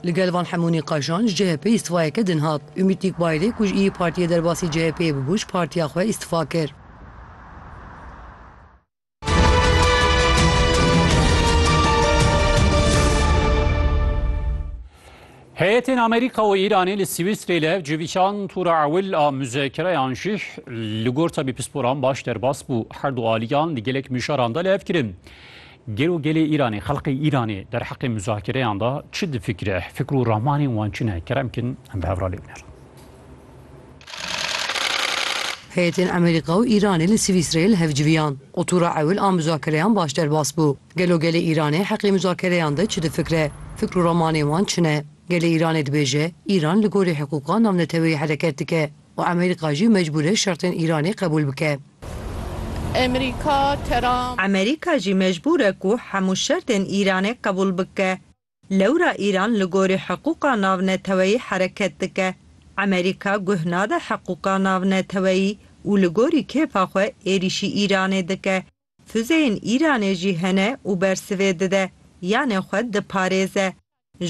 Li gel van hemû nîqaşan ji CHP'ê îstîfayeke din hat. Umît Nîkbayirê ku ji Îyî Partiyê derbasî CHP'ê bûbû ji partiya xwe îstîfa kir. Heyetên Amerîka û Îranê li Swîsrê li hev civîşan tûra ewil a muzekereyan jî li gor tevî pisporan baş derbas bû. Her du aliyan di gelek mijaran de li hev kirin. Gelo gelê Îranê, xelqê Îranê derheqê muzakereyan de çi difikire? Fikr û ramanên wan çi ne? Kerem bikin em bi hev re lê binerin. Heyetên Amerîka û Îranê li Swîsreyê li hev civiyan û tûra ewil a muzakereyan baş derbas bû. Gelo gelê Îranê heqê muzakereyan de çi difikire? Fikr û ramanên wan çi ne? Gelê Îranê dibêje, Îran li gorî hiqûqa navneteweyî hereket dike. û Amerîka jî mecbûr e şertên Îranê qebûl bike. Amerîka, Trump. Amerîka jî mecbûr e ku hemû şertên Îranê qebûl bike. Lewra Îran li gorî hiqûqa navneteweyî hereket dike. Amerîka guh nade hiqûqa navneteweyî û li gorî kêfa xwe êrîşî Îranê dike. Fuzeyên Îranê jî hene û bersivê dide, yanê xwe diparêze.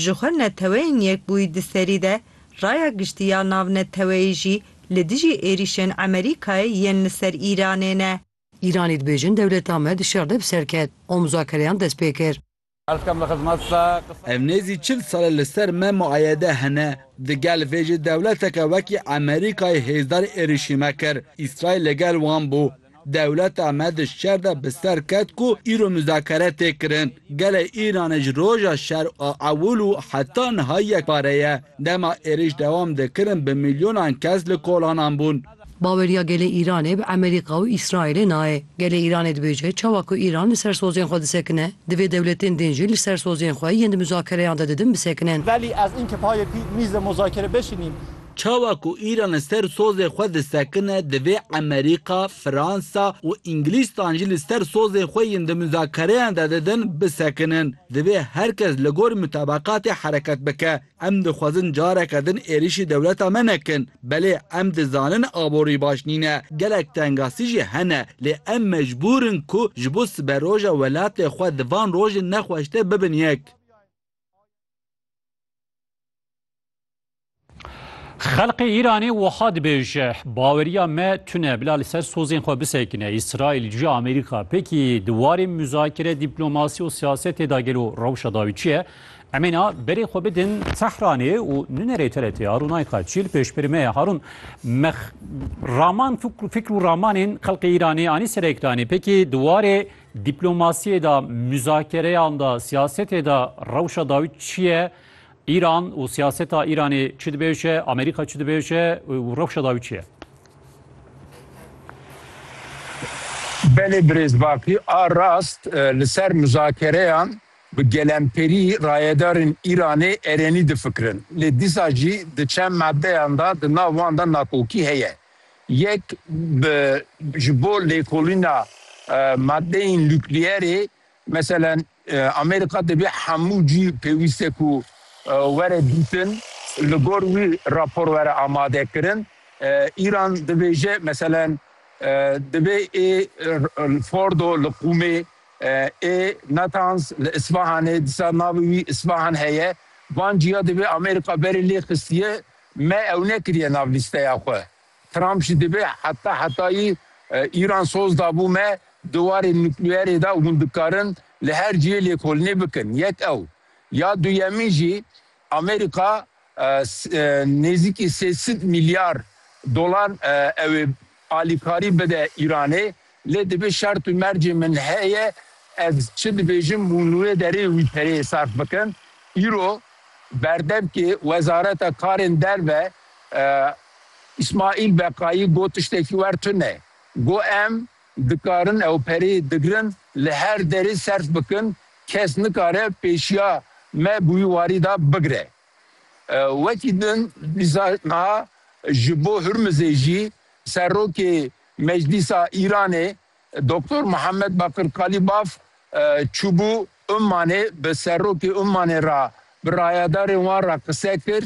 Ji xwe neteweyên Yekbûyî di serî de, Raya Giştî ya Navneteweyî jî li dijî êrîşên Emerîkayê yên li ser Îranê ne. Îranî dibêjin dewleta me di şer de bi ser ket û muzakereyan dest pê kir. Ev nêzî çil sal e li ser me muayede hene. Di gel vê jî dewleteke wekî Emerîkayê hêzdar êrîşîme kir. Îsraîl li gel wan bû. Dewleta me di şer de bi ser ket ku îro muzakere tê kirin. Gelê Îranê ji roja şer a ewil û heta niha yekpare ye. Dema êrîş dewam dikirin bi milyonan kes li kolanan bûn. Baweriya gelê Îranê bi Emerîka û Îsraîlê nayê. Gelê Îranê dibêje çawa ku Îran li ser sozên xwe disekine, divê dewletên din jî li ser sozên xwe yên di muzakereyan de didin bisekinin. Velî ez înki payê pî mîzê muzakere bişînîn. Çawa ku Îran li ser sozê xwe disekine, divê Emerîka, Fransa û Îngilîstan jî li ser sozên xwe yên di muzakereyan de didin bisekinin. Divê her kes li gor mutabakatê hereket bike. Em dixwazin careke din êrîşî dewleta me nekin. Belê em dizanin aborî baş nîne, gelek tengasî jî hene lê em mecbûr in ku ji bo siberoja welatê xwe di van rojên nexweş de bibin yek. Xelkê Îranê wiha dibêje, Baweriya me tune bila li ser sozên xwe bisekine. Îsraîl ji Amerîka pêkî di warê muzakere, dîplomasî û siyasetê de gelo rewşa dawî çi ye? Em ê na berê xwe bidin Tehranê û nunerê TRT'ya rûnayîka Çîl pêşbirîme ye Harûn. Me raman fîkr û ramanên xelkê Îranê anî ser ekranê. Pekî di warê dîplomasiyê de, muzakereyan de, siyasetê de rewşa dawî çi ye? Îran û siyaseta Îranê çi dibêje? Amerîka çi dibêje û rewşa dawî çi ye? Belê birêz Bakî a rast li ser muzakereyan Bi gelemperî rayedarên Îranê erenî difikirin. Lê dîsa jî di çend madeyan de di nav wan de nakokî heye. Yek bi ji bo lêkolîna madeyên nukleyerê mesela Amerîka dibê hemû cî pêwîst e ku were dîtin li gor wî rapor were amadekirin. Îran dibêje mesela dibê ê Fordo li Qûmê Ê Natanz li Îsfahanê disa navê wî Îsfahan heye. Van cîya divê Amerîka berê lê xistiye. Me ew nekiriye nav lîsteya xwe. Trump jî divê heta hetayî Îran soz dabû me di warê nukleyerê de û hûn dikarin li her ciyê lêkolînê bikin. Yek ew. Ya duyemîn jî Amerîka nêzîkî sê sed mîlyar dolar ew ê alîkarî bide Îranê lê dibê şert û mercê min heye ez çi dibêjim û nûyê derê wî pereyê serf bikim. Îro berdevkê Wezareta Karên Derve Îsmaîl Beqayî got tiştekî wer tune. Got em Dikarin ew perê digirin li her derê serf bikin, kes nikare pêşiya me bi wî warî de bigire. Wekî din dîsa niha ji bo Hurmizê jî Serokê Meclîsa Îranê Doktor Muhammed Bakir Kalîbaf çûbû Ummanê bi Serokê Ummanê re bi rayedarên wan re qise kir,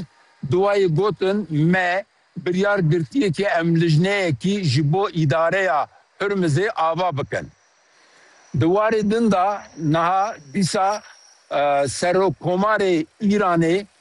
duwayê gotin me Biryar girtiye ku em lijneyekî ji bo îdareya Hurmizê ava bikin. Di warê din de niha dîsa Serokkomarê Îranê